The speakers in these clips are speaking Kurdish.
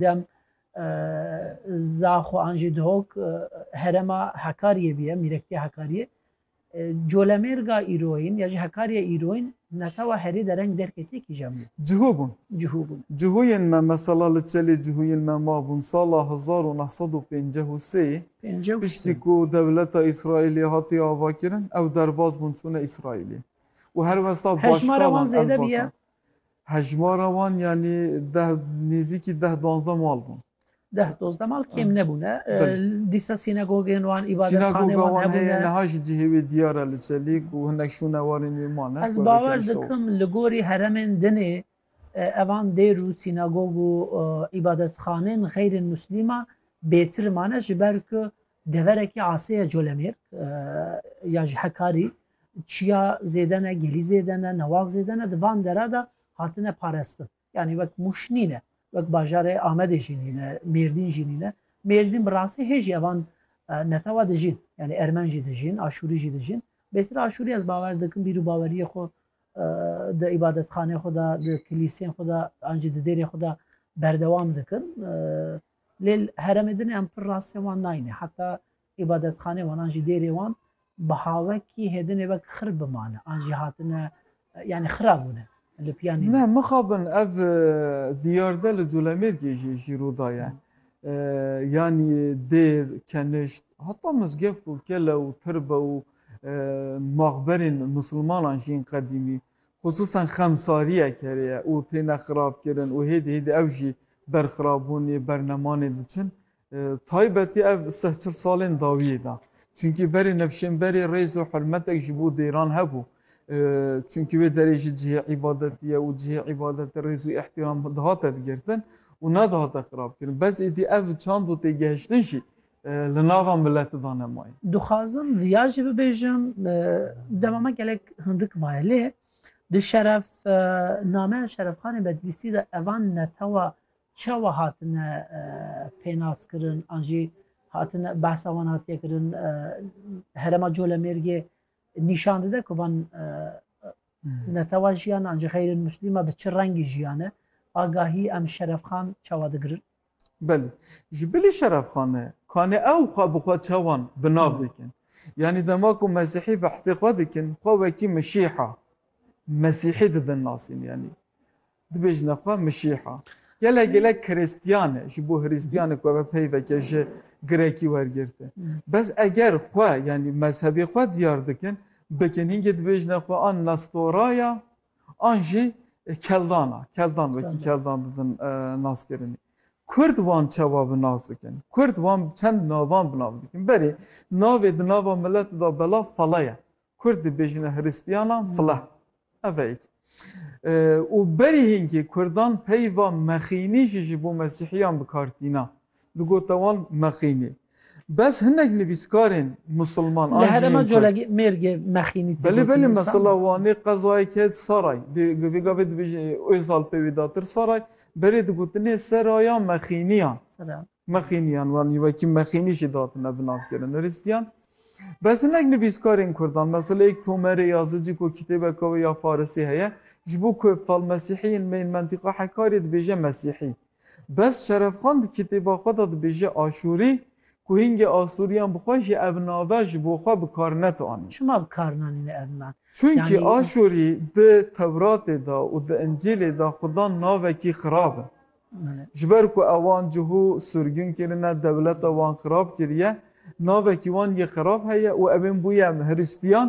Dem Zaxo an jî Dihok herema Hekariyê bûye, mîrektiya Hekariyê. Colemêrga îroyîn ya jî Hekariya îroyîn netewa herî dereng derkê tê kîjan bû? Cihû bûn. Cihû bûn. Cihûyên me mesela li Çelê cihûyên me mabûn sala hezar û neh sed û pênceh û sê-yê. Pênceh û sê. Piştî ku dewleta Îsraîlê hatiye avakirin ew derbas bûn çûne Îsraîlê û her wisa Hejmara wan başkalan ev zêde bûye. vatan. Hejmara wan yanî deh nêzîkî deh duwazdeh mal bûn. Deh duwazdeh mal kêm nebûne. Dîsa sînagogên wan, îbadetxaneyên wan hebûne. Sînagoga wan heye niha jî cihê wê diyar e li Çelîk û hinek şûne warên wê mane. Ez bawer dikim li gorî heremên dinê evan dêr û sînagog û îbadetxaneyên xeyrên muslîman bêtir mane ji ber ku Deverekî aseye colemêrg ya ji hekarî çiya zêde ne, gelî zêde ne, newal zêde ne di van dere de hatine parestin. Yanî wek Mûş nîne, wek bajarê Amedê jî nîne, Mêrdîn jî nîne. Mêrdîn bi rastî hê jî evan netewa dijîn. Yanî ermen jî dijîn, aşûrî jî dijîn. Bêtir aşûrî ez bawer dikim bîrûbaweriyê xwe di îbadetxaneyê xwe de, di kilîseyên xwe de an jî di dêrên xwe de berdewam dikin. Lê li herêmê din em pir rastiyên wan nayînê. Heta îbadetxaneyên wan an jî dêrê wan bi hawekî hêdinê wek xir bimane an jî hatine yanî xira bûne li piyanî din. Ne mixabin ev diyarde li Colemêrgê jî jî rû daye. Yanî dêr, kenişt heta mizgev ku kele û tirbe û maxberên misilmanan jî yên qedîmî Xisûsan xemsariyek heriye û têne xirabkirin û hêdî hêdî ew jî ber xirabûnê, ber nemanê diçin. Taybetî ev seh çil salên dawiyê de. Çunkî berê nevşênberê rêz û hurmetek ji bo dêran hebû. Çunkî wê derê jî cihê îbadetî ye û cihê îbadetî rêz û îhtîram dihate digirtin û nedihate xirabkirin. Bes êdî ev çand û têgehiştin jî Li nava milet da ne may. Dixwazim viya jî bibêjim dema me gelek hindik maye lê di şeref nameya şerefxanê Bedlîsî de evan netewa çawa hatine pênaskirin an jî hatine behsa wan hatiye kirin herema Colemêrgê nîşan dide ku van netewa jiyan an jî xeyrên muslîma bi çi rengî jiyane agahî em şerefxan çawa digirin. Belê. Ji bilî şerefxane, kanê ew xwe bi xwe çawan bi nav dikin. Yanî dema ku mesîhî behsê xwe dikin, xwe wekî Mişîha, Mesîhî didin nasîn yanî. Dibêjine xwe Mişîha. Gelek gelek Krîstiyan e, ji bo Hrîstiyanek we be pey veke ji Grekî wergirtin. Bes eger xwe yanî mezhebê xwe diyar dikin, bikin hingê dibêjine xwe a Nestoraya, an jî Keldan a, Keldan wekî Keldan didin naskirinê. Kurd wan çawa bi nas dikin? Kurd wan bi çend navan bi nav dikin. Berê navê di nava milet da belav fala ye. Kurd dibêjine Hristiyanan fila. Ev e yek. Û berî hînkê Kurdan peyva mexînî jî ji bo Mesîhiyan bi kar tîna. Digota wan mexînî. Bes hinek nivîskarên musilman an jî yên kurd. Li herêma Colegê mêrgê mexînî tê gotin. Belê belê mesela Wanê qezayek het Saray. Bi vê gavê dibêjin Ozal pê wê datir Saray. Berê digotinê Seraya Mexîniyan. Mexîniyan wanî wekî mexînî jî datine bi navkirin Hiristiyan. Bes hinek nivîskarên kurdan mesela yek Tomerê Yazıcı ku kitêbeka wê ya farisî heye ji bo ku fal mesîhî yên me yên mentiqa Hekarê dibêje mesîhî. Bes Şerefxan di kitêba xwe de dibêje Aşûrî, ku hingê Asûriyan bi xwe jî ev nave ji bo xwe bi kar net anî. Çima bi kar nanîne ev nav? Çunkî Aşûrî di Tewratê de û di Încîlê de xwe dan navekî xirab e. Ji ber ku ewan cihû surgûn kirine, dewleta wan xirab kiriye, navekî wan yê xirab heye û evên bûye Hiristiyan,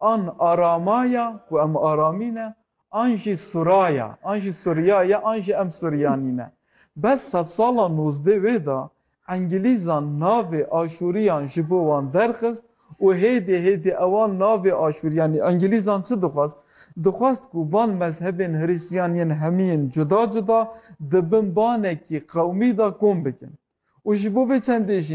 An arama ya ku em aramî ne, an jî sura ya, an jî suriya ye, an jî em suriyanî ne. Bes sedsala nozdeh wê de Engilîzan navê Aşûriyan ji bo wan derxist û hêdî hêdî ewan navê Aşûriyanî Engilîzan çi dixwest? Dixwest ku van mezhebên Hristiyan yên hemiyên cuda cuda di bin banekî qewmî de kom bikin û ji bo vê çendê jî